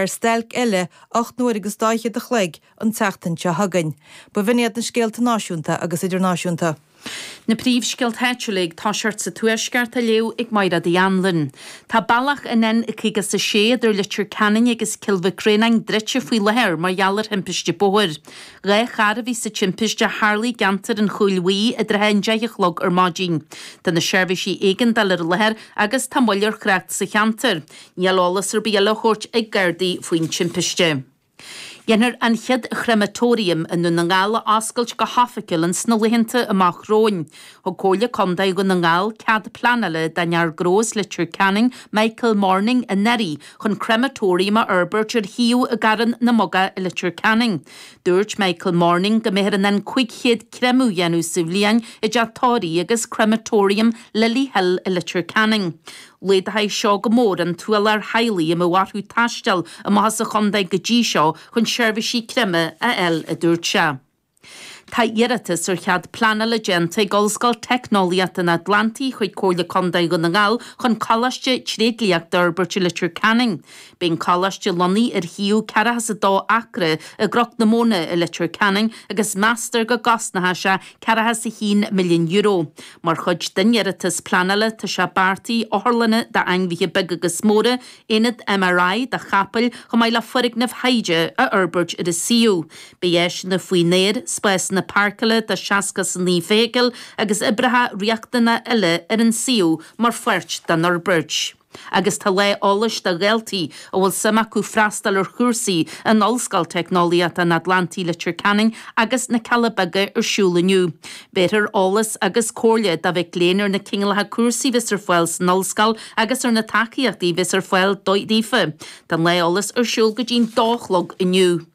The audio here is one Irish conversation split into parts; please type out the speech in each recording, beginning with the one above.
ar stailc eile ocht n-uair agus dá fhichead a chloig an tseachtain seo chugainn. Ba bh'in iad na scéalta náisiúnta agus idirnáisiúnta. Na príomhscéalta áitiúla ag toiseacht sa Tuaisceart á léamh ag Maighréad Uí Anluain. Tá bealach an N56 idir Leitir Ceanainn agus Cill Mhic Réanáin druidte faoi láthair mar gheall ar thimpiste bóthair. Dhá charr a bhí sa timpiste a tharla i gceantar an Chúil Bhuí i dtrátha an deich a chlog ar maidin. Tá na seirbhísí éigeandála ar láthair agus tá moill ar thrácht sa cheantar. Níl eolas ar bith eile á thabhairt ag Gardaí faoin timpiste. Dhéanfar an chéad chrematorium i nDún na nGall a oscailt go hoifigiúil in sna laethanta amach romhainn. Thug Comhairle Contae Dhún na nGall cead pleanála don fhear gnó as Leitir Ceanainn, Michael Morning, anuraidh chun crematorium a fhorbairt ar shuíomh i gCarn na mBogach i Leitir Ceanainn. Dúirt Michael Morning go mbeifear in ann 500 créamadh a dhéanamh sa bhliain i dteach tórraimh agus crematorium Lily Hill i Leitir Ceanainn. Laghdóidh seo go mór an t-ualach ar theaghlaigh a mbíodh orthu taisteal amach as an chontae go dtí seo chun seirbhísí créamtha a fháil, a dúirt sé. Tá iarratas ar chead pleanála déanta ag Ollscoil Teicneolaíochta an Atlantaigh chuig Comhairle Contae Dhún na nGall chun Coláiste Tréidliachta a fhorbairt i Leitir Ceanainn. Beidh an coláiste lonnaithe ar shuíomh ceathracha is a dó acra i gCnoc na Móna i Leitir Ceanainn agus meastar go gcosnóidh sé ceathracha is a haon milliún euro. Mar chuid den iarratas pleanála tá sé beartaithe otharlanna d'ainmhithe beaga agus móra, aonad MRI do chapaill chomh maith le foirgnimh thaighde a fhorbairt ar an suíomh. Beidh áiseanna faoin aer, spásanna páirceála do sheasca is a naoi feithicil agus oibreacha riachtanacha eile ar an suíomh mar pháirt den fhorbairt. Agus tá lá eolais do dhaltaí a bhfuil suim acu freastal ar chúrsaí in Ollscoil Teicneolaíochta an Atlantaigh Leitir Ceanainn agus na Cealla Beaga ar siúl inniu. Bhéarfar eolas agus comhairle do mhic léinn ar na cineálacha cúrsaí bheas ar fáil san Ollscoil agus ar na tacaíochtaí bheas ar fáil daofa. Tá an lá eolas ar siúl go dtí an dó a chlog inniu.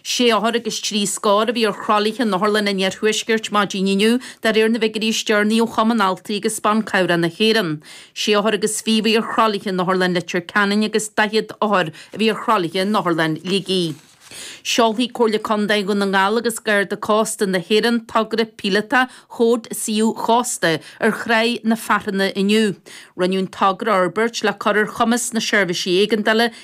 Sé othar agus trí scór a bhí ar thralaithe in otharlanna an Iarthuaiscirt maidin inniu dá réir na bhfigiúirí is deireanaí ó Chumann Altraí agus Ban Cabhrach na hÉireann. Sé othar agus fiche a bhí ar thralaithe in Otharlann Leitir Ceanainn agus daichead othar a bhí ar thralaithe in Otharlann Shligigh. Seolfaidh Comhairle Contae Dhún na nGall agus Garda Cósta na hÉireann togra píolótach Chód Suíomh Chósta ar Thráigh na Fearthanna inniu. Rinneadh an togra a fhorbairt le cur ar chumas na seirbhísí éigeandála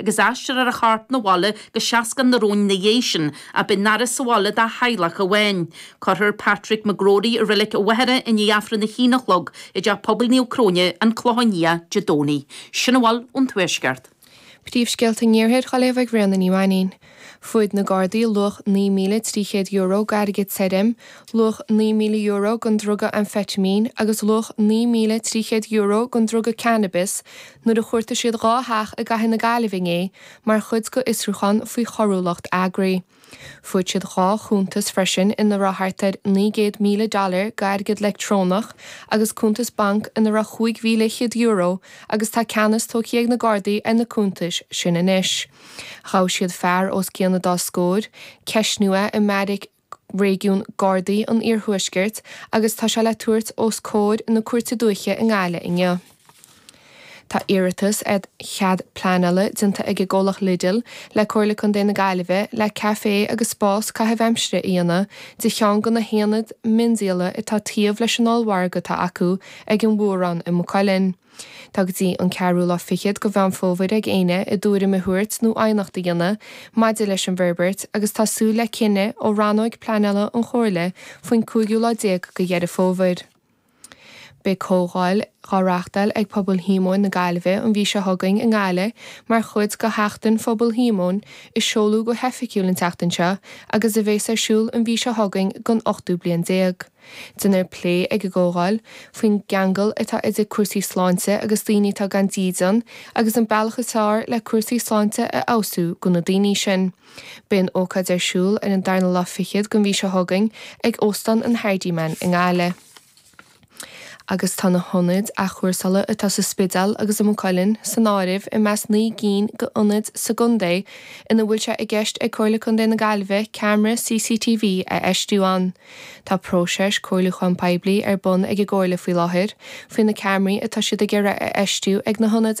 agus aistreofar a chorp 'na bhaile go Seascann an Róin ina dhiaidh sin, ach beidh an fhaire sa bhaile dá theaghlach amháin. Cuirfear Patrick McGrory i Reilig an Mhachaire i ndiaidh Aifreann a hAon a chlog i dTeach Pobail Naomh Cróine, An Clochán Liath, Dé Domhnaigh. Sin a bhfuil ón Tuaisceart. Príomhscéalta an Iarthair á léamh ag Bréanna Ní Mhainín. Fuair na Gardaí luach €9,300 d'airgead tirim, luach €9,000 den druga amfataimín agus luach €9,300 den druga cannabais nuair a chuartaigh siad dhá theach i gCathair na Gaillimhe inné mar chuid d'fhiosrúchán faoi choiriúlacht eagraithe. Fuair siad dhá chuntas freisin ina raibh thart ar $900,000 d'airgead leictreonach agus cuntas banc ina raibh €5,100 agus tá ceannas tógtha ag na Gardaí ar na cuntais sin anois. Ghabh siad fear os cionn an dá scór, ceistíodh é i mbeairic réigiún Gardaí an Iarthuaiscirt agus tá sé le tabhairt os comhair na Cúirte Dúiche i nGaillimh inniu. Tá iarratas ar chead pleanála déanta ag an gcomhlacht Lidl le Comhairle Contae na Gaillimhe le caifé agus spás caithimh aimsire a dhéanamh de cheann de na haonaid mhiondíola atá taobh leis an ollmhargadh atá acu ag an bhFuarán i Maigh Cuilinn. Tá go dtí an ceathrú lá fichead de Mheán Fómhair ag daoine a dtuairim a thabhairt nó aighneacht a dhéanamh maidir leis an bhforbairt agus tá súil le cinneadh ó rannóig pleanála an Chomhairle faoin cúigiú lá déag de Dheireadh Fómhair. Beidh comhdháil á reachtáil ag Pobal Shíomóin na Gaillimhe an mhí seo chugainn i nGaillimh mar chuid de Sheachtain Phobal Shíomóin a seoladh go hoifigiúil an tseachtain seo agus a bheas ar siúl an mhí seo chugainn don ochtú bliain déag. Déanfar plé ag an gcomhdháil faoin gceangal atá idir cúrsaí sláinte agus daoine atá gan dídean agus an bealach is fearr le cúrsaí sláinte a fheabhsú do na daoine sin. Beidh an ócáid ar siúl ar an darna lá fichead den mhí seo chugainn ag Óstán an Hardiman i nGaillimh. agus tá na hionaid athchúrsála atá sa Spidéal agus i Maigh Cuilinn san áireamh i measc naoi gcinn d'ionaid sa gcontae ina bhfuil sé i gceist ag Comhairle Contae na Gaillimhe ceamara CCTV a fheistiú iontu. Tá próiseas comhairliúcháin poiblí ar bun ag an gComhairle faoi láthair faoi na ceamaraí atá siad ag iarraidh a fheistiú ag na hionaid